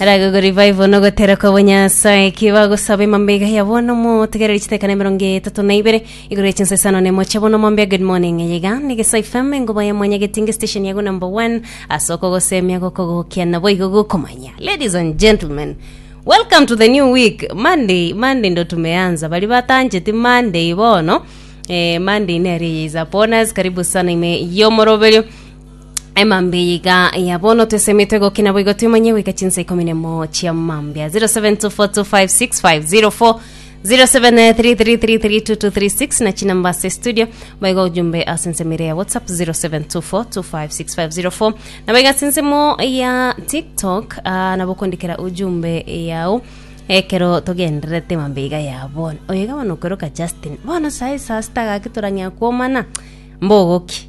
Araga go revival no gotera kwa bonyasae kiba gosaba emambega ya bono mo tegereri chitekana emerongo etatu na ibere igoro ya chinsa isano ne moche bono mambia good morning yega negesa ifm engoba ya mwanya getinge station yago number one asoko gosemia goko gokia nabo igo gokomanya ladies and gentlemen welcome to the new week monday monday ndo tumeanza bari batancheti monday bono eh, monday nere is upon us karibu sana ime yomoroberio emambia eye iga ya bono twesemete gokina boigo twimanye goika chinsa ikomi nemo chia mambia 0724256504 0733332236 na chinamba ase studio baigo ojumbe ase ensemo ere ya whatsapp 0724256504 na baigo ase ensemo ya tiktok ah, nabo okondikera ujumbe yao ekero togendererete mambia iga ya bono oyo iga bono okweroka justin bono sae saa sita gaki torang'ea kwomana mbogoki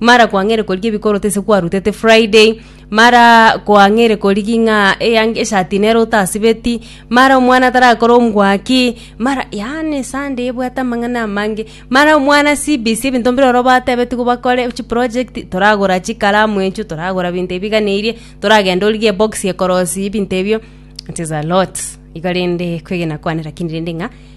Mara kwang'eire korigia ebikoroto ase kwarutete Friday, mara kwang'eire korigia ng'a eyang eshati nere otasibeti, mara omwana tarakore omwaki, mara yaani esande ebwate amang'ana amange. Mara omwana CBC ebinto mbire ororo batebetigwe bakore chiprojekti, toragora chikalamu echio, toragora binto ebi biganeirie, toragenda origie ebox ekorosi ebinto ebio, it is a lot. Iga rende kwegena kwane rakini rende ng'a.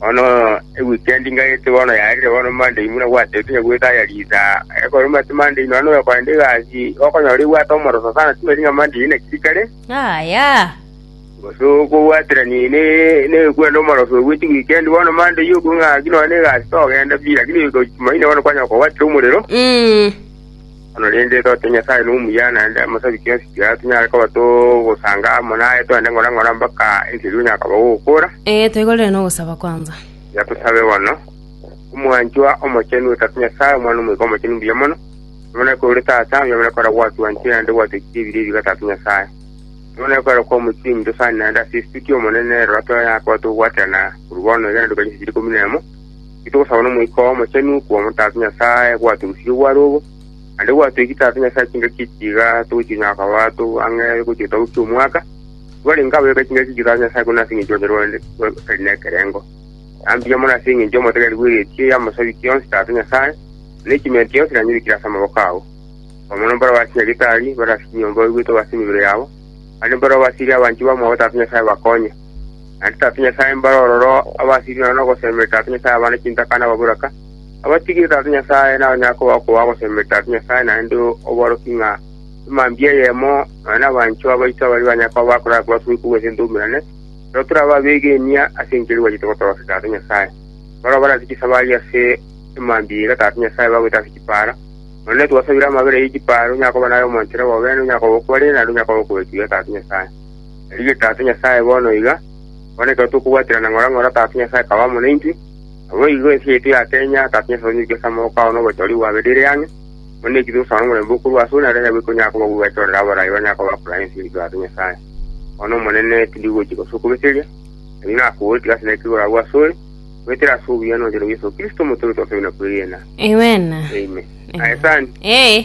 Bono ewikendi ngayete bono yarire bono Monday buna gwatebirekire goika aya risa. Ekero omanyete Monday nonya noyo okorenta egasi, okonyora ebwate omoroso sana timanyeti ng'a Monday naki rikare, Yaya! gose okobwaterania ne- nekwenda omoroso oyo gochia wikendi. Bono Monday okwe ng'a naki nonya na egasi togenda pi, lakini goika Jumaine bono kwanyora kobwatire omorero. Mm. Korende totebe Nyasae nomuya, naende amasabi chionsi chiaito nyare koba togosanga amo naye, togende ng'ora ng'ora mpaka enchera igo yakoba gogokora. Ee, toigorere nogosaba kwanza. Tiga tosabe bono. Omwanchwa Omochenu o Tata Nyasae, Omwana Omoika Omochenu mbuya mono, omoneke ore Tata, oyomare kora gwatwanchire naende gwatwechire ebiro ebiga Tata Nyasae. Oyomare kora kwamochire eminto sani naende ase esituki, Omonene, rora toyakoba togwaterana korwa bono igana rikonyesechire ikomi nemo, Titogosaba n'Omoika oo Omochenu kw'omo Tata Nyasae gwatorusirie gware obo, naende gwatoikie Tata Nyasae chingaki echi iga togochinyora koba too ang'e gochia getabu ki'omwaka, tibarenge abayoka chingaki echi Tata Nyasae korende ase engencho onye rwao rotari nekerengo. Aya mbuya mono ase engencho y'omotegereri bw'egechi y'amosabi kionsi Tata Nyasae, na echimenti yonsi nanyebekire ase amaboko ao. Koba mono mbarabwo ase nyagetari, barase chinyomba baigwete obo ase emibere yabo, naende mbarabwo basirie abanchwa bamwabo Tata Nyasae bakonye. Naende Tata Nyasae mbare ororo abasirigwe nonya nogosemeria Tata Nyasae abana chintaka na ababoraka, abatigire Tata Nyasae, nabanyare koba okoba ogosemeria Tata Nyasae naende oborokia ng'a emambia eyemo nonya nabanchwa baito abaria banyare koba bakorara kobasubire kobua ense ntoumerane, ekero tore ababegenia ase enchera eria gwachete gotorokia Tata Nyasae. Barabwo bare ase chisabari ase emambia eira Tata Nyasae bagoeta ase chipaara. Nonya netwasabire amabera ye chipaara, onyare koba naye omonchera bobene, onyare koba okwarire naende onyare koba okoetigwa Tata Nyasae. Erigiyo Tata Nyasae bono iga, bono ekero tokobwaterana ng'ora ng'ora Tata Nyasae akaba amo naintwe, naboigo ense yaito ya Kenya Tata Nyasae onyuke ase amaboko ao na obochorigwa bwabere ere ang'e, buna eki togosaba nomorembe okorwa asore naro onye bwekonyara koba buna bwachorire abarai banyare koba bakura ense yaito Tata Nyasae. Bono Omonene, tindi gochika ase okobeseria, erio nakoboria tiga ase naki igoro agwo asore, goetera ase obuya nochando bwa Yeso Kristo Omote oito twasabire na kwegena. Amen. Amen. Aye sani. Ee.